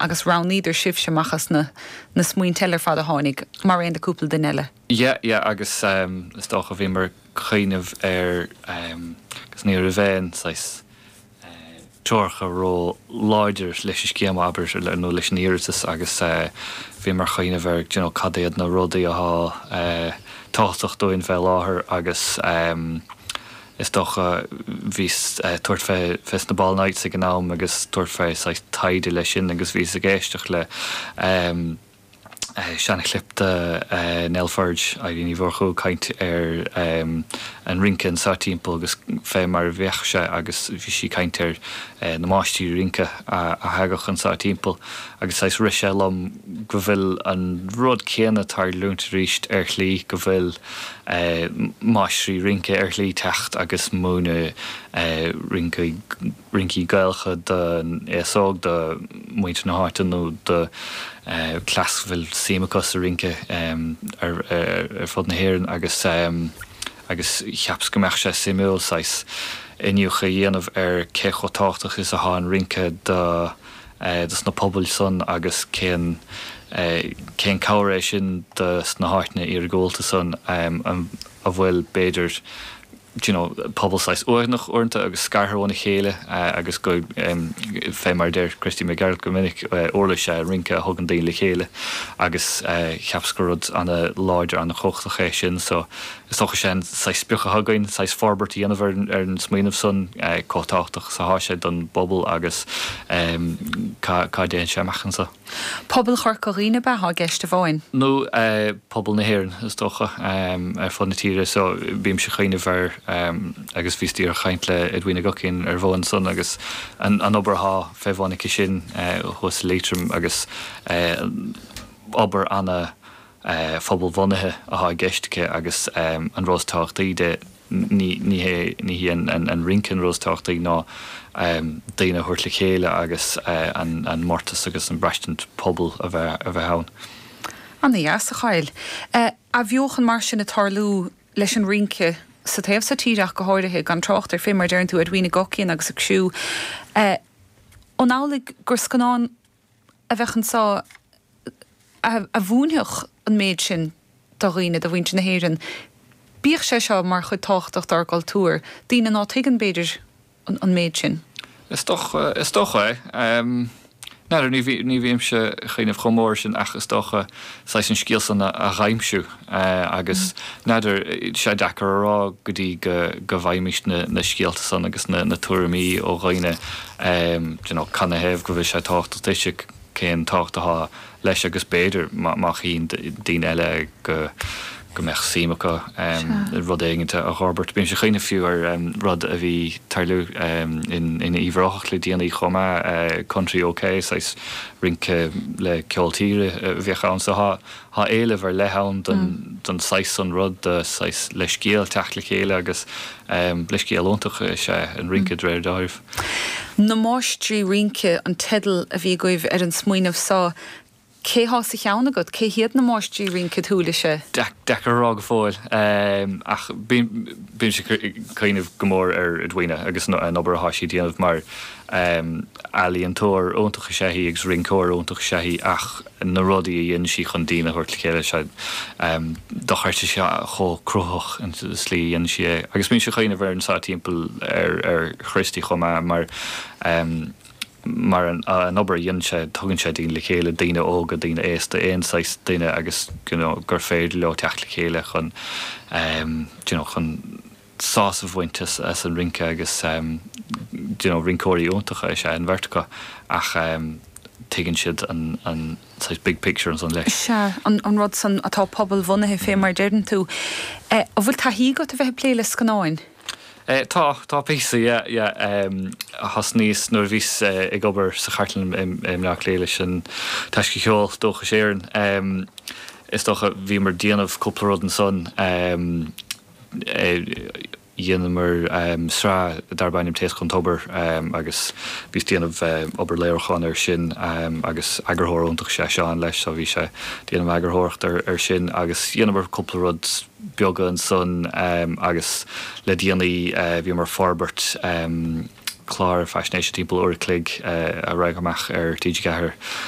agus roghnaíodar sibhse amach as na smaointe eile ar fad a tháinig, mar aon le cúpla duine eile. Yeah, yeah, agus em is dócha bhíomar ag cuimhneamh ar em agus ní raibh aon saghas eh treoracha ró láidir leis an scéim abair nó leis an iarratas agus eh bhíomar ag cuimhneamh ar d'you know cad iad na rudaí atá eh tábhachtach dúinn fé láthair agus em is dócha. Bhíos ag tabhairt fé sna Ball Nights ag an am agus tabhairt fé saghas taighde le sin agus bhíos ag éisteacht le em eh seana-chlip de eh Nell Pheaid Aeraí Ní Mhurchú ag caint ar em an rince anseo timpeall agus fé mar a bhíodh sé agus bhí sí ag caint ar eh na máistrí rince a a thagadh anseo timpeall agus saghas rith sé liom go bhfuil an rud céanna tarlúint arís ar shlí, go bhfuil máistrí rince ar shlí teacht agus múineadh rincí Gaelacha don aos óg, do mhuintir na háite nó do cleas go bhfuil suim acu sa rince ar fud na hÉireann agus agus cheapas go mbeadh sé suimiúil saghas iniúchadh a dhéanamh ar cé chomh tábhachtach is atá an rince do dos na pobail san agus cén cén cabhair é sin dos na háiteanna iargúlta san go bhfuil b'fhéidir do you know pobal saghas uaigneach uaireanta agus scartha óna chéile agus go fé mar a deir Christy Mac Gearailt go minic uirlis é an rince a thugann daoine le chéile agus cheapas gur rud ana láidir ana chumhachtach é sin so Is dócha sé an saghas sprioc atá againn, saghas forbairt a dhéanamh ar an smaoineamh san, chomh tábhachtach is atá sé don bpobal agus cá dtéann sé amach anso. Pobal Chorca Dhuibhne ab ea atá i gceist amháin? Nó pobal na hÉireann is dócha, ar fud na tíre so bímse ag cuimhneamh ar agus bhíos díreach ag caint le Edwina Guckian ar a bhonn san agus an obair atá fé bhun aici sin thuas i Liatroim agus obair ana phobalbhunaithe atá i gceist aici agus an rud is tábhachtaí de ní hí an rince an rud is tábhachtaí ná daoine a thabhairt le chéile agus an mórtas agus an braistint pobail atá a bheith ann. An bhfuil sórt athbheochan mar sin ag tarlú leis an rince sa taobh so tíre ach go háirithe, gan trácht ar fé mar deireann tú, Edwina Guckian agus iad siúd. An amhlaidh gur scannán a bheadh anseo a mhúinfeadh an méid sin do dhaoine, do mhuintir na hÉireann. Bíodh sé seo mar chuid thábhachtach dár gcultúr, daoine ná tuigeann, b'fhéidir, an méid sin. Is dócha, is dócha é. N'fheadar, ní bhímse ag cuimhneamh chomh mór sin ach is dócha. saghas an scéal san a dh'aimsiú agus n'fheadar, sé deacair a rá go dtí go bhfaighimís na scéalta san agus na tuairimí ó dhaoine, you know, canathaobh go bhfuil sé tábhachtach duit agus cén tábhacht atá leis agus b'fhéidir má chíonn daoine eile go. go mbeadh suim acu i rud éigint a fhorbairt. Bímse ag cuimhneamh fiú ar rud a bhí ag tarlú in Uíbh Ráthach le déanaí chomh maith, Country OK, saghas rince le ceol tíre a bheadh ann. So tá éileamh ar leith ann don saghas san rud, do shaghas leithscéal teacht le chéile agus leithscéal iontach is ea an rince de réir dealraimh. Na Máistrí Rince an teideal a bhí agaibh ar an smaoineamh so. Cé atá sa cheann agat? Cé hiad na máistrí rince? Bhuel, sé deacair a rá go fóill, ach bímse ag cuimhneamh go mór ar Edwina agus an obair atá sí ag déanamh mar ealaíontóir iontach is ea í agus rinceoir iontach is ea í ach na rudaí a dhéanann sí chun daoine a thabhairt le chéile, sé dochreidte is chomh cruthaitheach an tslí a dhéanann sí é. Agus bímse ag cuimhneamh ar an saghas timpeall ar Christy chomh maith mar, Mar an obair a dhéanann sé, tugann sé daoine le chéile, daoine óga, daoine aosta, aon saghas duine agus you know gur féidir leo teacht le chéile chun em you know chun sásamh a bhaint as as an rince agus em you know rinceoirí iontacha is ea an bheirt acu ach em tuigeann siad an an saghas big picture ansan leis. Is ea, an an rud san atá pobalbhunaithe fé mar a deireann tú. Eh an bhfuil taithí agat a bheith ag plé le scannáin? Eh tá, tá píosa yeah, yeah em thosnaíos nuair a bhíos ag obair sa chartlann i mBleá Cliath leis an Taisce Cheol Dúchais Éireann em is dócha bhíomar ag déanamh cúpla rud ansan em eh dhéanamar em sraith darb ainm Taoscadh ón Tobar em agus bhíos ag déanamh em obair léiriúcháin ar sin em agus eagarthóir iontach is ea Seán leis so bhí sé ag déanamh eagarthóireacht ar sin agus dhéanamar cúpla rud beaga ansan agus le déanaí bhíomar ag forbairt clár faisnéise timpeall uair a chloig a raghadh amach ar TG4.